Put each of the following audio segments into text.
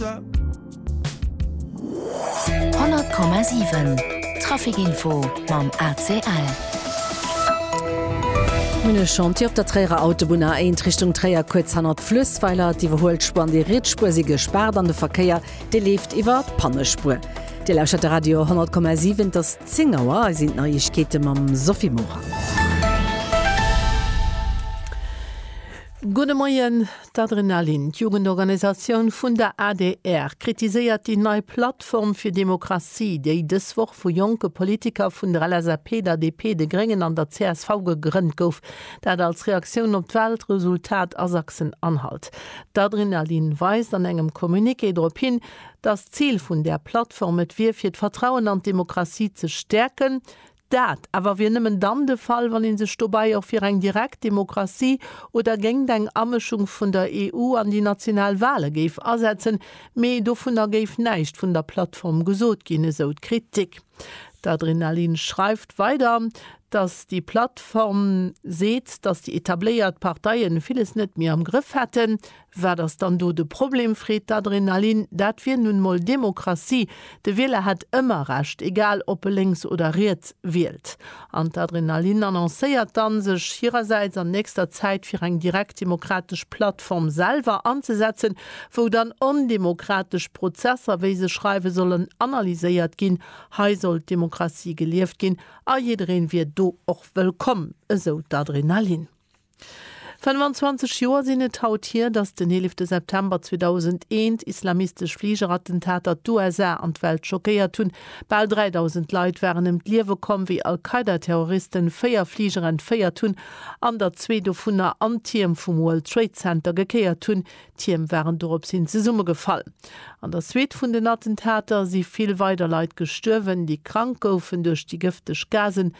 100,7 Trafikinfo mam ACL. Mir hunn e Chantier op der Tréierer Autobunn A1 Richtung Tréier, kuerz hannert d'Fluessweiler. D'Iwwerhuel Spuer an déi riets Spuer si gespaart an de Verkéier, dee leeft iwwer d'Pannespuer. Dir lauschert de Radio 100,7. Et ass 10 Auer. Hei sinn d'Neiegkeete mam Sophie Morang. Gudde Moien. D'Adrenalin, d'Jugendorganisatioun vun der adr, kritiséiert déi nei Plattform fir Demokratie, déi dës Woch vu jonke Politiker vun der LSAP, der DP, de Gréngen an der csv gegrënnt gouf. Dat als Reaktioun op d'Walresultat a Sachsen-Anhalt. D'Adrenalin weist an engem Communiqué drop hin, datt d'Zil vun där Plattform et wier, fir d'Vertrauen an d'Demokratie ze stäerken. Dat awer wier nëmmen dann de Fall, wann ee sech dobäi och fir eng direkt Demokratie oder géingt eng Amëschung vun der EU an déi national Wale géif asetzen. Mee dovunner géif näischt vun der Plattform gesot ginn, esou d'Kritik. D'Adrenalin schreift weider, datt déi Plattform seet, datt déi etabléiert Parteien villes net méi am Grëff hätten. Wat ass dann do de Problem? freet d'Adrenalin. Dat wier nun mol Demokratie, de Wieler hätt ëmmer Recht, egal ob e lénks oder riets wielt. An d'Adrenalin annoncéiert dann, sech hirersäits an nächster Zäit fir eng direktdemokratesch Plattform selwer anzesetzen, wou dann ondemokratesch Prozesser, wéi se schreiwen, sollen analyséiert ginn. Hei soll d'Demokratie gelieft ginn a jiddereen wier do och wëllkomm, esou d'Adrenalin. 25 Joer sinn et haut hier, datt den 11 September 2001 islamistesch Fligerattentater d'USA an d'Welt schockéiert hunn. Bal 3.000 Leit waren ëm d'Liewe komm, wéi Al-Qaida-Terroristen véier Fliger entféiert hunn an der zwee dovunner an d'Tierm vum World Trade Center gekéiert hunn. D'Tierm waren dorops hin zesummegefall. An der Suite vun den Attentater si vill weider Leit gestuerwen, déi krank goufen duerch déi gëfteg Gasen,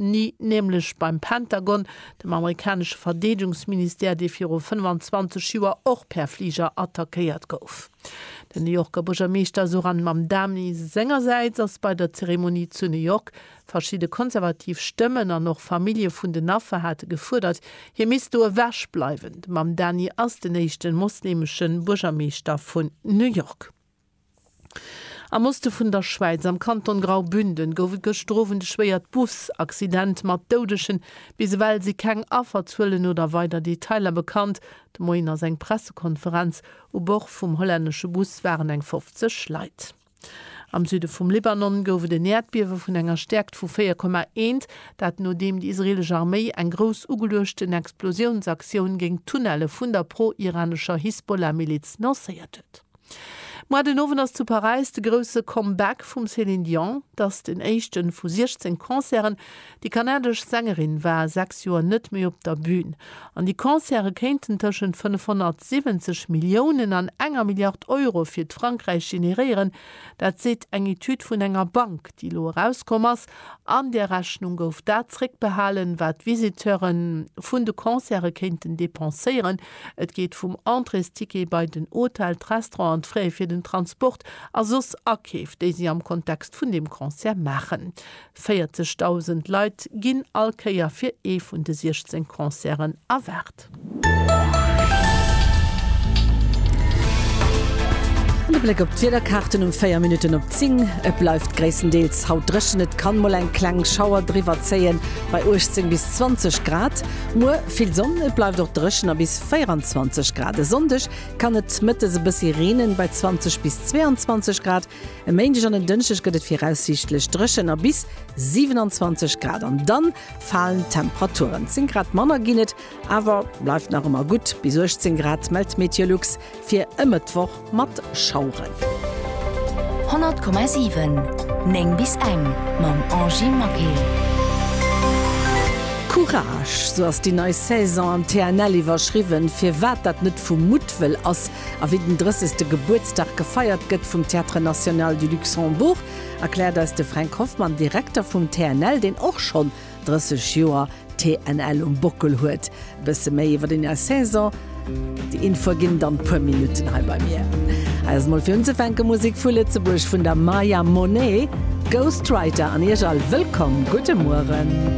Ni, nämlech beim Pentagon, dem amerikanesche Verdeedegungsministère, dee viru 25 Joer och per Fliger attackéiert gouf. Den New Yorker Buergermeeschter Zohran Mamdani sengersäits ass bei der Zeremonie zu New York. Verschidde konservativ Stëmmen an och Famillje vun den Affer hate gefuerdert, hie misst do ewech bleiwen. De Mamdani ass den éischte mosleemesche Buergermeeschter vun New York. Am Oste vun der Schwäiz, am Kanton Graubünden, gouf et gëschter Owend e schwéiert Bus-Accident mat Doudeschen. Bis ewell si keng Afferzuelen oder weider Detailer bekannt. De Moien ass eng Pressekonferenz. U Bord vum hollännesche Bus waren eng 50 Leit. Am Süde vum Libanon gouf et en Äerdbiewe vun enger Stäerkt vu 4,1, dat nodeem déi israeelesch Arméi eng grouss ugeluechten Explosiounsaktioun géint d'Tunnelle vun der pro-iranescher Hisbollah-Miliz lancéiert huet. Moi den Owend ass zu Paräis de grousse Comeback vum Céline Dion. Et ass den éischte vu 16 Concerten. Déi kanadesch Sängerin war 6 Joer net méi op der Bün. An déi Concerte kéinten tëschent 570 Milliounen an enger Milliard Euro fir d'Frankräich generéieren. Dat seet eng Etüd vun enger Bank, déi elo erauskomm ass. An där Rechnung gouf dat zeréckbehalen, wat d'Visiteure vun de Concerte kéinten depenséieren. Et geet vum Entréesticket bei den Hotel, d'Restaurant an d'Frais fir den Transport a soss Akeef, déi si am Kontext vun deem Concert maachen. 40.000 Leit ginn all Kéier fir ee vun de 16 Concerten erwaart. An e Bléck op d'Wiederkaarten um 4 Minutten op 10, Et bleift gréisstendeels haut dréchen, et kann mol eng kleng Schauer driwwerzéien bei 18 bis 20 Grad. Muer. Vill Sonn, et bleift och dréchen a bis 24 Grad. E Sonndeg kann et mëttes e bëssi reenen, bei 20 bis 22 Grad. E Méindeg an en Dënschdeg gëtt et viraussiichtlech dréchen a bis 27 Grad an dann falen d'Temperaturen. 10 Grad manner ginn et, awer bleift nach ëmmer gutt bis 18 Grad, mellt Meteolux. Fir e Mëttwoch mat Schaueren. 100,7 9 bis eng mam Angie Maquet. Courage, sou ass déi nei Saison am TNL iwwerschriwwen. Firwat dat net vu Muttwëll ass a wéi den 30 ste Gebuertsdag gefeiert gëtt vum Théâtre National du Luxembourg, erkläert eis de Fränk Hoffmann, Direkter vum TNL, deen och schonn 30 Joer TNL um Bockel huet. E bësse méi iwwer deen Är Saison. Déi Info erginn dann puer Minutten hei bei mir. Hei ass mol fir unzefänke Musek vu Lëtzebuerg vun der Maya Monet, Ghostwriter an Iech all wëllkomm. Gudde Mueren.